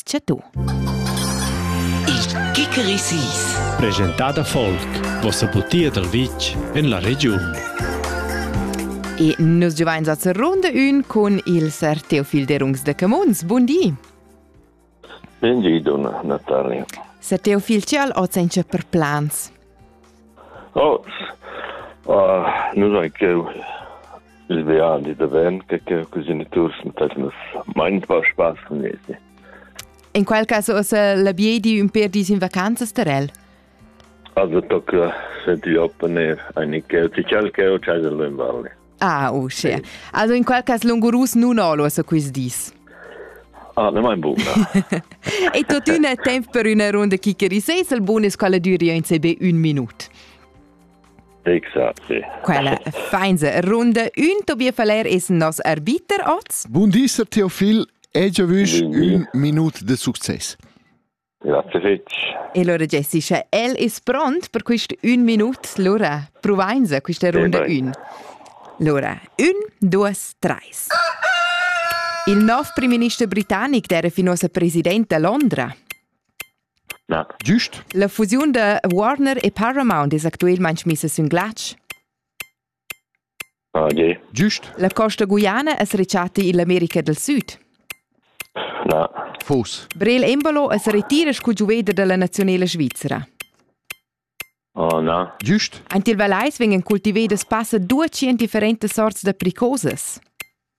tge tu. Il Kikerisis. Presentada folk, vossa butia dal vitg en la regiun. E nus giuvains a Zerrunde ün cun il Ser Teofil Derungs de Camuns. Bundi! Bundi, donna Natalia. Ser Teofil, ce al oz per plans? Oh, ah, nus ein cheu il viadi davent che che cogeniturs mettesmas mein un po spaß con esi. In quel caso ussa la biedi un per dis in vacanzas ter el. Also tocca se ti opponer eine Kälte, cial Kälte, cial in Valle. Ah, uschia. Sì. Also in qual cas lungurus nun olo a quist dis. Ah, ne mein buna. e tuttina temp per üna runda chickerisais, il bonus quella düria in CB un minut. Exact, sì. Quella feinse runda un Tobias Faller ist nos arbiter oz. Buondisser Theophil, e giavüsch un minut de succes. Grazie fetg. E allora Jessica, el es pront per quist ün minut. Lura provainsa quista runda e ün. Lura, un, duas, treis. Il nov primminister britannic era fin ossa president da Londra. Ja. Giust? La fusiun da Warner e Paramount es actuelmaing missa sün glatsch. Giust. La costa Guyana es rechatta ill'America del Süd. Na. Fos. Brel Embolo as retira sco giuveder dalla nazionela svizzera. Oh, na. Giust. Ant il Valais vegnan cultivedas passa dueci en differentas sorts da pricosas.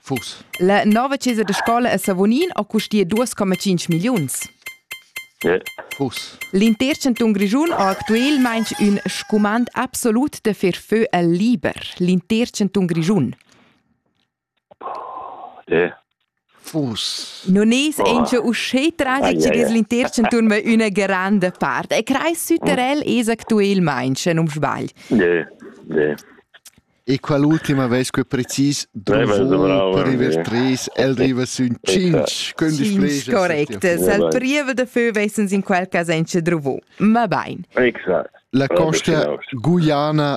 Fuss. La nova chesa da scola a Savognin ha custia duas coma tschinch milliuns. Fuss. L'intер chantun Grischun ha actuelmaing ün scumand absolut da fer fö al liber. L'intер chantun Grischun. Non es auncha uschè tragic es l'inter chantun ma üna granda part. E crais süterel es actuelmaing, sche non sbagl. Yeah, yeah. E qual ultima vez que precis dovrò per river 3 el riva sün 5 quindi spregia correct al priva da fö vesens in quel cas enche drovo ma bain exact la costa guiana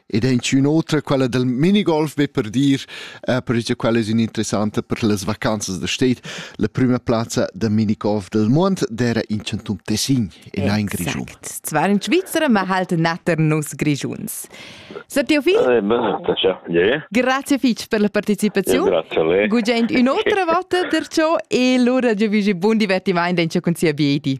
ed è inchün otra quella del minigolf be per dir, eh, perche quella es interessanta per las vacanzas da stet, la prüma plazza da minigolf del mond d'era in Chantum Tessin in ein Grischun. Zwar in Schweizer, ma halt natter nus Grischuns. Sir Teofil? Eh, Grazie fitch per la partecipazione. Grazie a lei. Gugent un'altra volta per ciò e lura giovisi buon divertimento in ciò con sia biedi.